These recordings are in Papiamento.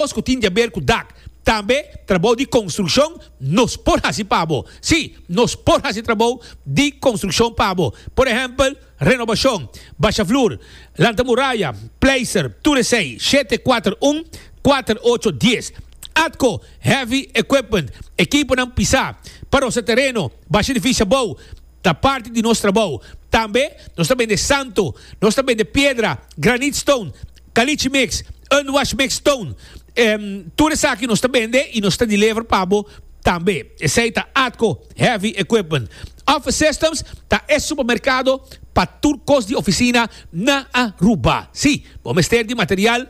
Kos ku tin di a ber ku dak, tambe trabou di konstrukshon, nos por hasi pa bo. Sí, nos por hasi trabou di konstrukshon pa bo. Por ehèmpel, renobashon, basha flur, lanta muraya, pleister, tur esei, shete kuater un, kuater ocho, dies. Atko, heavy equipment, ekiponan pisá, pa rosa tereno, basha edifisio abou, ta parti di nos trabou. Tambe nos ta bende santo, nos ta bende piedra, granitstone, Caliche mix, unwash mix toon. Em, tur esaki nos ta bende y nos ta deliver pa bo tambe. Esey ta ATCO Heavy Equipment. Office Systems ta e supermercado pa tur cos di oficina na Aruba. Si, bo mester di material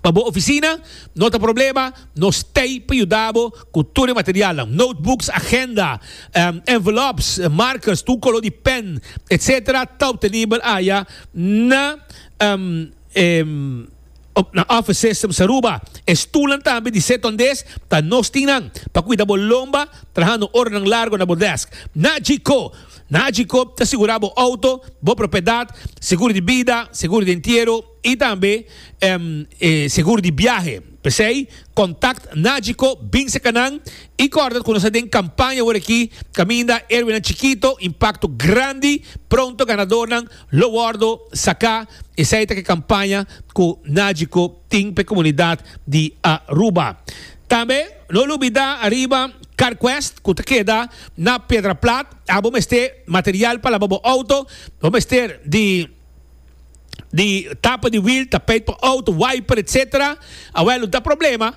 pa bo oficina? No ta problema, nos t'ey pa yuda bo cu tur e materialnan, notebooks, agenda, em, envelopes, markers, tur color di pen, etc. Ta obtenibel aya na Um, em, op nan office systems Aruba, e stoelnan tambe di sit-on des ta nos tin nan, pa cuida bo lomba trahando oranan largo na bo desk. Nagico, Nagico ta sigura bo auto, bo propiedad, seguro di bida, seguro di entiero y tambe, em, e seguro di biahe. P'esey, contact Nagico bin cerca nan y corda cu nos ta den campaña aworaki caminda Héroenan Chikito, Impacto Grandi, Pronto Ganadornan, Lo wordo saca esey ta ke campaña cu Nagico tin p'e comunidad di Aruba. Tambe no lubida ariba CarQuest cu ta keda na Piedraplat. A bo mester material pa laba bo auto, bo mester di di tapa di wiel, tapijt pa auto, wiper etc. Awel no ta problema.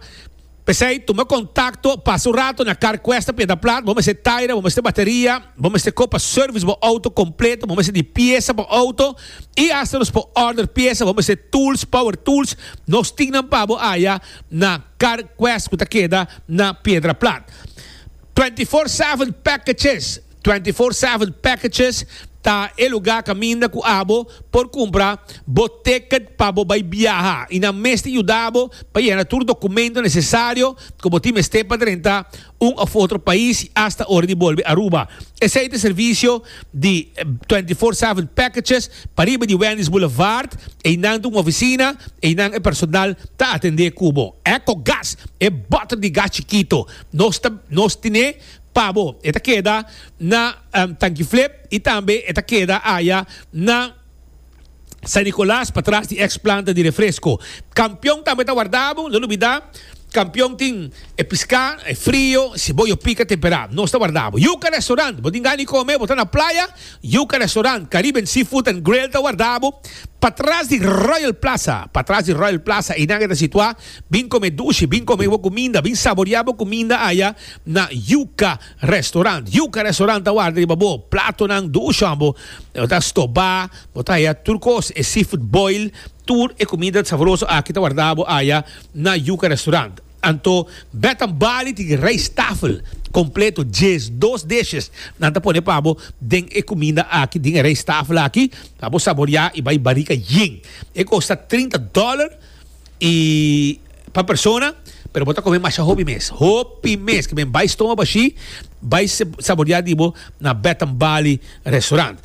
P'esei, tuma kontakto, pasa un rato na Carquest pa e da plat. Bo mester taira, bo mester bateria, bo mester kop pa sèrvis bo outo kompleto, bo mester di piesa pa outo i asta nos por òrder piesa. Bo mester tools, power tools, nos tin nan pa bo aya na Carquest ku ta keda na Piedraplat. Twenty four seven pèkechis Twenty Four Seven Packages ta e lugá kaminda ku abo por kumpra bo tèkèt pa bo bai biaha i nan mester yuda bo pa yena tur dokumento nesesario ku bo tin mester pa drenta un òf otro pais i asta ora di bolbe Aruba. Esei ta e servisio di Twenty Four Seven Packages pariba di Wendy's Boulevard. Einan ta un ofisina, einan e personal ta atendé ku bo. Ecogas, e bòter di gas chikito nos ta nos tine. pa bo. E ta keda na Tankiflip y tambe e ta keda aya na San Nicolas patras di ex planta di refresco. Campeon tambe ta warda bo, no lubida Campeon tin e pisca e frio, ceboyo pica tempera. Nos ta warda bo. Yuca Restaurant, bo tin gan di come, bo ta na playa, Yuca Restaurant, Caribbean Seafood and Grill ta warda bo patras di Royal Plaza, patras di Royal Plaza, einan e ta situa. Bin come dushi, bin come bo cuminda, bin saboria bo cuminda aya na Yuca Restaurant. Yuca Restaurant ta warda riba bo platonan dushon bo ta stoba, bo ta haya tur cos, e seafood boil, tur e comida saboroso aki ta warda bo aya na Yuca Restaurant. Anto Bath and Body tin rijsttafel completo, djes, dos dishes nan ta pone pa bo den e cuminda aki, den e rijsttafel aki pa bo saboria y bay barriga yen. E costa trinta dollar. y pa persona pero bo ta come masha hopi mes hopi mes que men bay stoma bashi bay saborear di bo na Bath and Bali restaurant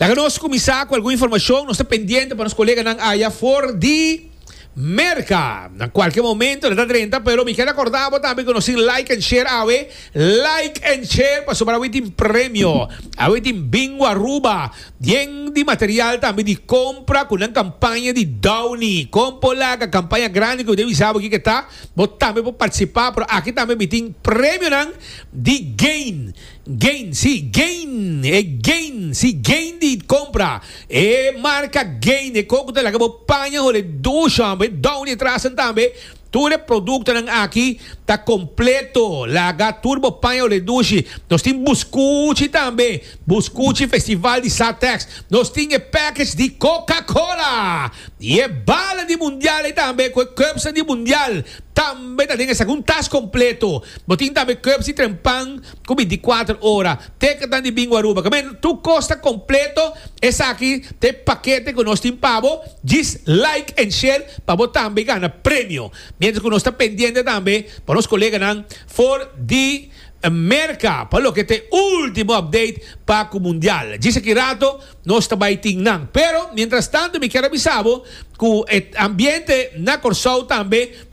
laga nos cuminsa cu algun informacion nos ta pendiente pa nos coleganan aya for di Merca na cualkier momento nan ta drenta pero mi kier acorda bo tambe cu nos tin like and share awe like and share pasobra awe tin premio awe tin bingo Aruba Bien di material tambe di compra cu nan campaña di Downy. Con por laga campaña grandi cu bo debe bisa bo kico ta, bo tambe por participa, pero aki tambe mi tin premionan di gain, gain, si, gain, e gain, si, gain di compra, e marca gain, e coco ta laga bo paña hol'e Dushan, bo e Downy e trasen tambe. Tur e produktonan aki ta kompleto, laga tur bo paña redushi. Nos tin buskuchi tambe, buskuchi festival di Satex. Nos tin e package di Coca Cola i e bala di mundial ei tambe ku e cubsnan di mundial tambe ta den esaki un tas kompleto. Bo tin tambe cubs di trempan, cu bin di cuater ora teken tan di bin Guaruba. Came tur cos ta completo. Esaki ta e pakete cu nos tin pa bo. Djis like en share pa bo tambe gana premio. Mientras cu nos ta pendiente tambe pa nos coleganan for di Merca pa loke ta e ultimo update pa cu Mundial. Djis aki rato nos ta bay tin nan. Pero mientras tanto mi kier a bisa bo cu e ambiente na Corsou tambe.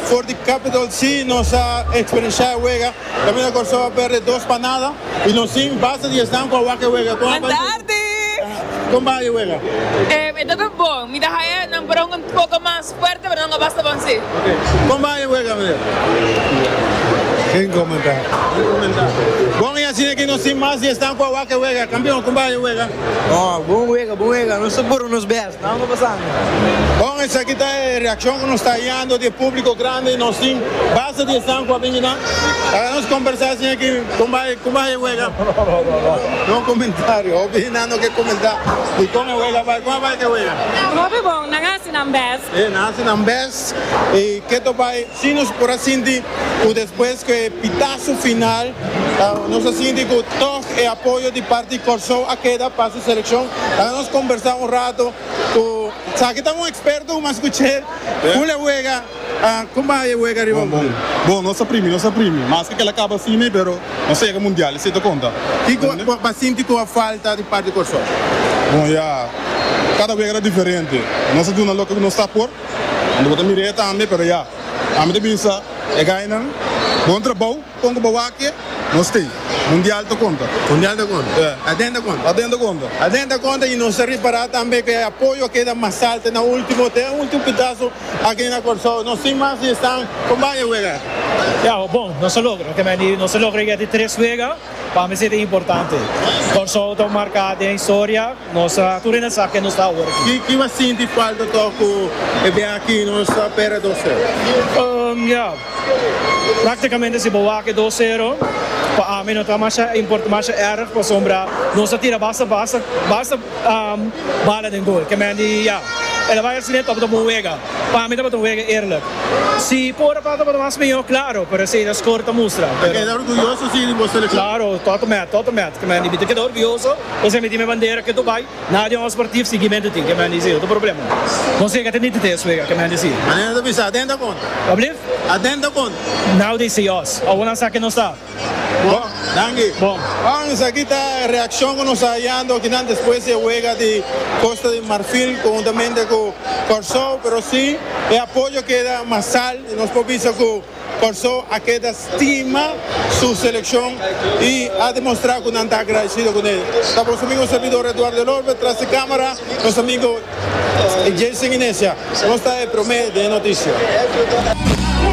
For di Capital si nos a experienciá e wega, Caminda Kòrsou a pèrdè dos pa nada i nos tin basta di esnan ku a wak e wega. Kon a bai e wega? Kon bai e wega? E ta ta bon. Mi ta haña nan para un poko mas fuerte pero nan a basta bon si. Kon bai e wega mester? Sin komentá. Sin komentá. Bon i asina ke nos tin mas di esnan ku a wak e wega. Kampion, kon bai e wega? Bon wega, bon wega. Nos ta puru nos bèst. Bon, esaki ta e reakshon ku nos ta hayando di e públiko grandi ku nos tin. Basta di esnan ku a bini nan, laga nos kombersá sin aki. Kon bai? Kon bai e wega? No komentario. Hopi hinan no ke komentá di kon e wega a bai. Kon a bai ku e wega? Hopi bon, nan hasi nan bèst. E, nan hasi nan bèst. I ke ta bai? Si nos por a sinti ku despues ku e pitasu final nos a sinti ku tòg e apoyo di parti Kòrsou a keda. Seleccion ta nos combersa un rato cu Saki ta un experto un mas cu Che Cul e wega Con bay e wega riba Bon bon nos a primi nos a primi mas kela caba asina pero nos a yega mundial y si ta conta Kico cu a sinti cu a falta di parti Corson? Bon ya cada wega ta diferente nos a duna loke cu nos ta por y bo ta mira e tambe pero ya ami ta bisa e gainan bon trabao. Kon ku bo wakia? Nos tin. Mundial ta konta. Mundial ta konta. Ya. Aden ta konta. Aden ta konta. Aden ta konta i nos ta ripará tambe ku e apoyo a keda mas alta na último, te e último pitaso aki na Kòrsou. Nos tin mas di estan kon baña wega. Ya, ho bon nos a logra. Kende di nos a logra yega di tres wega, pa mi si ta importante. Kòrsou ta marká den historia. Nos ta tur ena sa ke nos ta awor aki. Ki bo a sinti falta tòg ku e biaha aki nos ta pera dos wega? Ya. Práktikamente si bo wak e dos sero, pa ami no ta masha import, masha èrg pasobra nos a tira basta basta basta bala den gol. Ke men di ya, el a bai hasi den tabata bon wega. Pa ami tabata un wega eerlijk. Si por a ta tabata mas mihó, klaro, pero esei ta skor ta mustra. Bo ta keda orguyoso si di bo selekshon? Klaro, tòt mèt, tòt mèt. Ke men di, mi ta keda orguyoso, esei mi tin mi bandera ketu bai. Na den osper tif siguimentu tin ke mi han disi. Otro problema. Nos tin ke keda nitite e suegra ke mi han disi. Manera ta bisa adenta konta. Wak blief? Adenta konta. Now they say us. Awor nan sa ken nos ta. Bon. Danki. Bon. Bon, esaki ta e reakshon ku nos ta hayando akinan despues di e wega di Kosta di Marfil konhuntamente ku Kòrsou, pero si e apoyo keda masal i nos por bisa ku. Kòrsou a keda stima su selekshon i a demostrá ku nan ta agradesido kuné. Ta boso amigo servidor Edouard Delorme, tras di kámara nos amigo Jason Inesia. Nos ta e promé den e noticia.